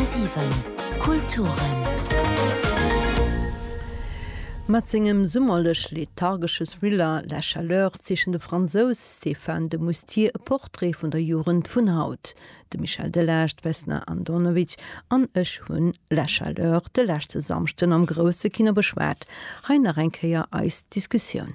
10,7 Kulturen. Mat sengem summerlech-lethargesche Thriller La Chaleur zeechent de Fransous Stéphane de Moustier e Portrait vun der Jugend vun haut. De Michel Delage, d'Vesna Andonovic an ech hunn La Chaleur de leschte Samschden am grousse Kino beschwat. Hei nach eng Kéier eis Diskussioun.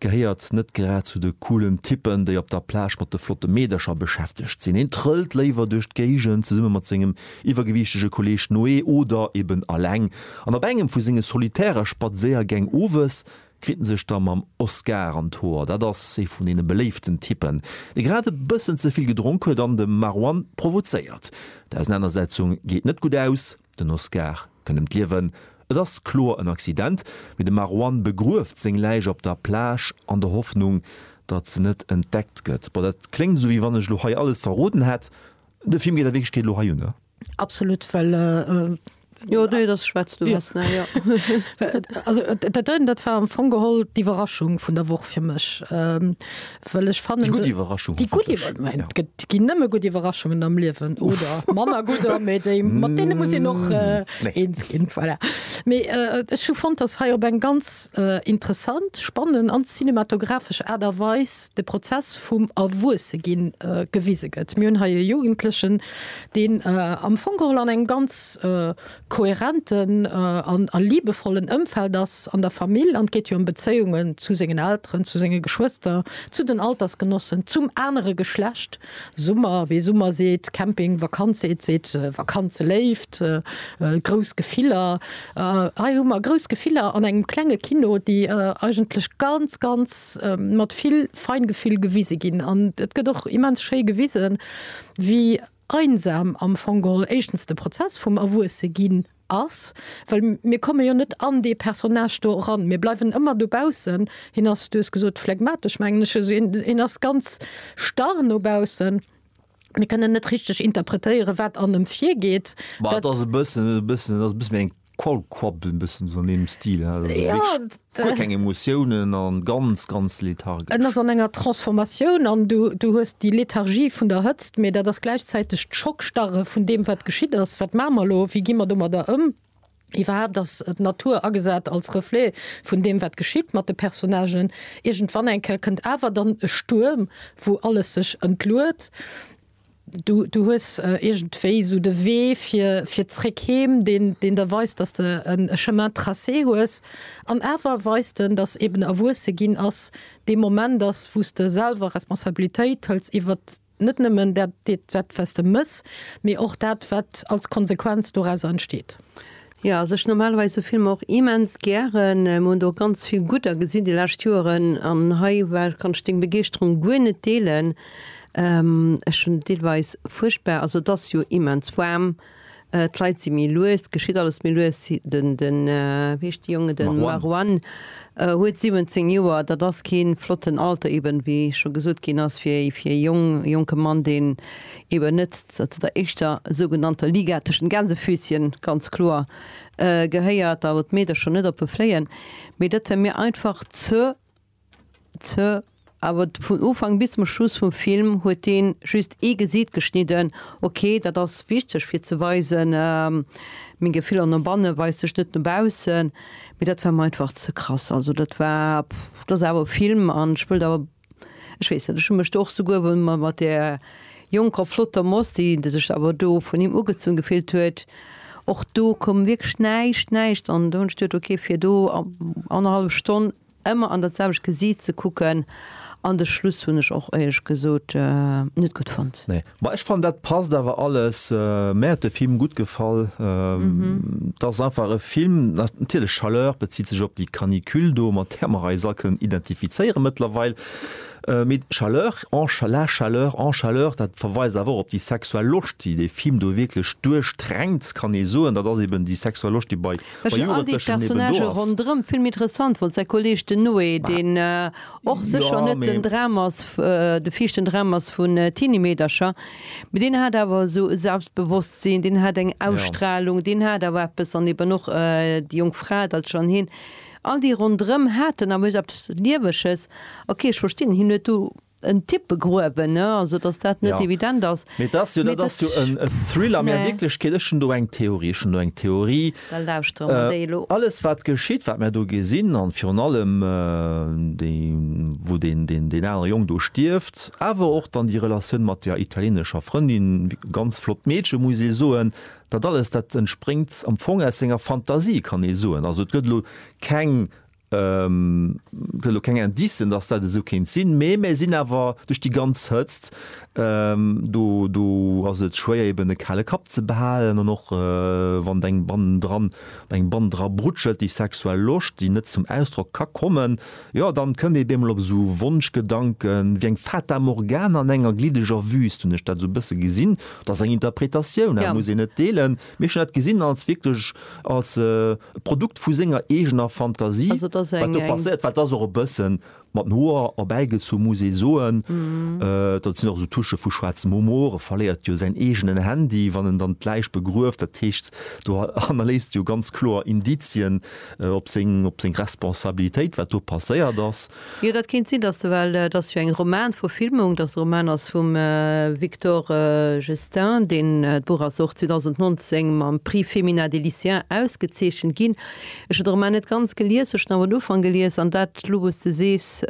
Gehéiert net grad zu de coolen Typen, déi op der Plage mat de flotte Meedercher beschäftegt sinn. Hien trëllt léiwer duerch d'Géigend zesumme mat sengem iwwergewiichtege Kolleeg Noé oder eben aleng. An op engem vu senge solitäre Spadséiergäng owes kritt en sech da mam Oscar an d'Hoer. Dat ass ee vun deene beléiften Typen, dee grad e bëssen ze vill gedronk huet an de Marwan provozéiert. D'Ausenanersetzung geet net gutt aus, den Oscar kënnt ëm d'Liewen Et ass kloer en Accident, mee de Marwan begrueft seng Läich op der Plage an der Hoffnung, datt se net entdeckt gëtt. Bon, dat kléngt esou, wéi wann ech elo hei alles verroden hätt. De Film geet a Wierklechkeet elo hei ënner. Absolut, well. Jo, nee, dat schwätzt du lass, ne? Jo. Also dat war am Fong geholl d'Iwwerraschung vun der Woch fir mech. Well ech fannen, déi gutt Iwwerraschung, déi gutt Iwwerraschung, ja. Et ginn nëmme gutt Iwwerraschungen am Liewen oder manner gudder, mee déi, mat deene muss een och eens ginn. Voilà. Mee ech hu fonnt, datt hei op eng ganz interessant, spannend an cinematographesch Aart a Weis de Prozess vum Erwuesseginn gewise gëtt. Mir hunn hei e Jugendlechen, deen am Fong geholl an engem ganz kohärenten a liebevollen Ëmfeld ass, an der Famill, an et geet jo ëm Bezéiungen zu sengen Elteren, zu senge Geschwëster, zu den Altersgenossen, zum anere Geschlecht, Summer, wee Summer seet, Camping, Vakanz seet, seet Vakanzeléift, grouss Gefiller. Hei hu mer grouss Gefiller an engem klenge Kino, déi eigentlech ganz, ganz mat vill Feingefühl gewise ginn. An et gëtt och immens schéi gewisen, wéi. Einsam am Fong geholl éischtens de Prozess vum Erwuesseginn ass, well mir komme jo net an dee Personnage do eran, mir bleiwen ëmmer dobaussen. Hien ass, du hues gesot phlegmatesch, mengen ech, also hien ass ganz starr no baussen. Mir kënnen net richteg interpretéieren, wat an ëm virgeet. Mä et ass e bëssen, e bëssen, et ass e bëssen wéi eng Qualquapp en bëssen esou an deem Stil he, also Ja, wierklech an d'. guer keng Emotiounen an ganz ganz lethargesch. En ass an enger Transformatioun an du du hues déi Lethargie vun der Hëtzt, mee dat ass gläichzäiteg d'Schockstarre vun deem wat geschitt ass. Wat maache mer elo? Wéi gi mer domadder ëm? Iwwerhaapt ass d'Natur agesat als Reflet vun deem wat geschitt mat de Personnagen. Iergendwann eng Kéier kënnt awer dann e Stuerm wou alles sech entluet. Du, du hues iergendwéi esou de Wee fir, fir zréck heem, deen, deen der weist, dass de en Chemin tracé hues. An awer weist en, dass eben Erwuesse ginn ass dee Moment ass, wou s de selwer Responsabilitéit hëls iwwert net nëmmen dat, wat s de méchs, mee och dat, wat als Konsequenz dorauser entsteet. Jo, also ech normalerweis sou Filmer och immens gären. Mir hunn do ganz vill gudder gesinn déi lescht Joeren an hei war, kann ech deng Begeeschterung guer net deelen. Ech hunn deelweis fuerchtbar, also et ass jo immens waarm, d'Leit si méi lues, geschitt alles méi lues. Den, den, wéi heescht de Jongen, de Marwan huet 17 Joer, dat ass kee flotten Alter eben, wéi scho gesot ginn ass, fir, fir e Jong, jonke Mann, deen eben net zu der éischter sougenannter Liga tëschent Gänsefüßchen, ganz kloer, gehéiert, da wou d'Meedercher scho net oppe fléien, mee dat war mir einfach ze, ze, awer vun Ufank bis zum Schluss vum Film huet dee just ee Gesiit geschnidden, ok, dat ass wichteg fir ze weisen, meng Gefiller no banne weist sech, net no baussen, mee dat war mir einfach ze krass, also dat war, pff, dat ass awer e Film an ech wëllt awer. Ech weess net, ech hu mech do och souguer emol mol mat där jonker, flotter Moss, déi, déi sech awer do vun him ugezunn gefillt huet, och do koum wierklech näischt, näischt. An do hunn ech geduet, okay, fir do annerhallef Stonn ëmmer an dat selwecht Gesiit ze kucken. An de Schluss hunn ech och éierlech gesot net gutt fonnt. Nee, Ma ech fannen dat passt awer alles. Mär huet de Film gutt gefall. Et ass einfach e Film, natierlech Chaleur bezitt sech op déi Canicule do, mat där mer eis all kënnen identifizéiere mëttlerweil. Mee Chaleur en cha la chaleur en chaleur, dat verweist awer och op déi sexuell Loscht, déi dee Film do wierklech duerchdränkt, kann ee soen. Dat ass eben déi sexuell Loscht, déi bei Jugendlechen eben do ass. Ech hunn all déi Personnagen ronderëm vill méi interessant fonnt. Säi Kolleeg, den Noé, deen och sécher net den Dram ass, de viischten Dram ass vun Tiny Meedercher, mee deen hat awer esou e Selbstbewosstsinn, deen hat eng Ausstrahlung, deen hat awer eppes an eben och déi jonk Fra, d'Altsch an hien, all déi ronderëm haten awer iergend eppes Lieweges. Ok, ech verstinn, hien huet do en Tipp begruewen, ne, also datt dat net evident ass. Mee et ass jo, dat ass jo e Thriller, mee a Wierklechkeet, ech hunn do eng Theorie, ech hunn do eng Theorie, Da lauschtere mer déi elo. Alles wat geschitt, wat mär do gesinn, an virun allem déi wou deen deen anere Jong do stierft, awer och dann déi Relatioun mat der italienescher Frëndin, ganz flott Meedchen muss ee soen, dat alles dat entspréngt am Fong aus senger Fantasie kann ee soen. Also et gëtt elo keng Et gëtt elo keng Indicen, datt dat esou kéint sinn, mee mir sinn awer duerch déi ganz Hëtzt, do, do ass et schwéier eben e kale Kapp ze behalen an och wann et eng bannendran, wann eng Band dra brutschelt, déi sexuell Loscht, déi net zum Ausdrock ka kommen, jo dann kënnt ee bemol op esou Wonschgedanken, wéi eng Fata Morgana an enger glideger Wüüst, hunn ech dat esou e bësse gesinn, dat ass eng Interpretatioun, dat muss een net deelen. Mir hu dat gesinn als wierklech als Produkt vu senger eegener Fantasie, wat do passéiert war. Dat ass och e bësse mat den Hoer erbäigezu, muss ee soen. Dat sinn och esou Touchë vu schwaarzem Humor. E verléiert jo säin eegenen Handy, wann en dann d'Läich begrueft. Dat heescht, do hannerléisst e jo ganz kloer Indizien op seng Responsabilitéit, wat do passéiert ass. Jo, dat kéint sinn, dass de, well et ass jo eng Romanverfilmung, dass de Roman ass vum Victor Gestin, deen, d'Buch ass och 2019 mam Prix Femina des Lycéens ausgezeechent ginn. Ech hunn de Roman net ganz gelies, ech hunn awer den Ufank gelies, an dat elo, wou s de sees,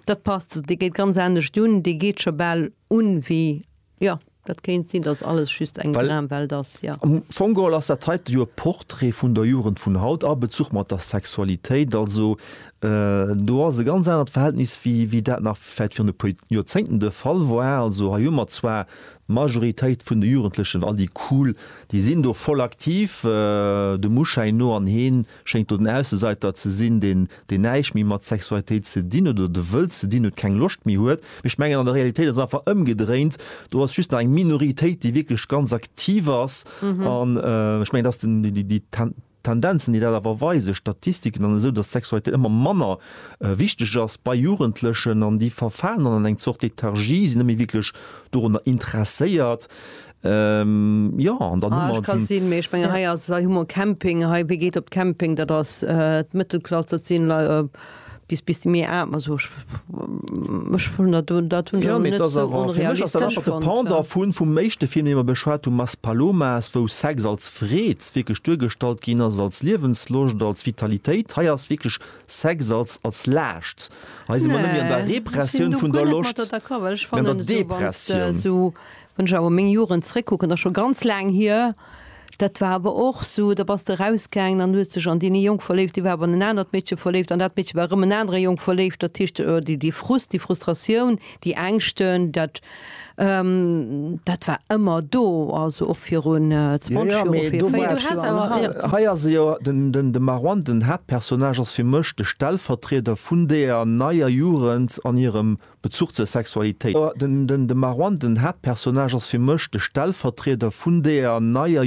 dat passt. Dee geet ganz anescht un, dee geet scho bal un wéi Jo, dat kéint sinn, dass alles just eng Dramwelt ass, jo. Am Fong geholl ass dat heite jo e Portrait vun der Jugend vun haut a Bezuch mat der Sexualitéit. Also do ass e ganz anert Verhältnis, wéi dat nach vläicht virun e puer Joerzéngten de Fall war. Also hei hu mer zwar d'Majoritéit vun de Jugendlechen, all déi cool, déi sinn do voll aktiv, dem Uschäin no, an heen, schéngt do den Ausseseiter ze sinn, deen deen näischt méi mat Sexualitéit ze dinn huet oder de wëllt ze dinn huet, keng Loscht méi huet. Mee ech mengen an der Realitéit ass et einfach ëmgedréint, do ass just nach eng Minoritéit, déi wierklech ganz aktiv ass an ech mengen, dass den déi déi Tendenzen, déi dat awer weisen, Statistiken an esou, dass Sexualitéit ëmmer manner wichteg ass bei Jugendlechen an déi verfalen dann an eng Zort Lethargie, sinn net méi wierklech dorunner interesséiert. Jo an dann hu mer d'Sinn. Sinn, mee ech mengen hei ass, hei hu mer Camping, hei wie geet op Camping, dat ass d'Mëttelklass, dat sinn Lei bis bis déi méi aarm, also ech ech hunn dat do, dat hunn ech awer net esou onrealistesch fonnt. De Pendant vun vum éischte Film, dee mer beschwat hunn, Maspalomas, wou Sex als Freed wierklech duergestallt ginn ass, als Liewensloscht, als Vitalitéit, hei ass wierklech Sex als als Laascht. Hei si mer net méi an der Repressioun vun der Loscht, mee an der Depressioun. Wann ech awer meng Joren zréckkucken, ass scho ganz laang hier, dat war awer och esou, da bass de erausgaangen an hues dech an deen ee Jong verléift, dee war awer an en anert Meedche verléift an dat Meedche war erëm en anere Jong verléift. Dat heescht, déi Frust, déi Frustratioun, déi Ängschten, dat dat war ëmmer do, also och virun 20 Joer, vir 40 Joer an haut. Hei ass e jo, den de Marouane, den Haaptpersonnage, ass fir mech de Stellvertrieder vun deeër neier Jugend an hirem Bezuch zur Sexualitéit. De Marwan, den Haaptpersonnage, ass fir mech de Stellvertrieder vun deeër neier.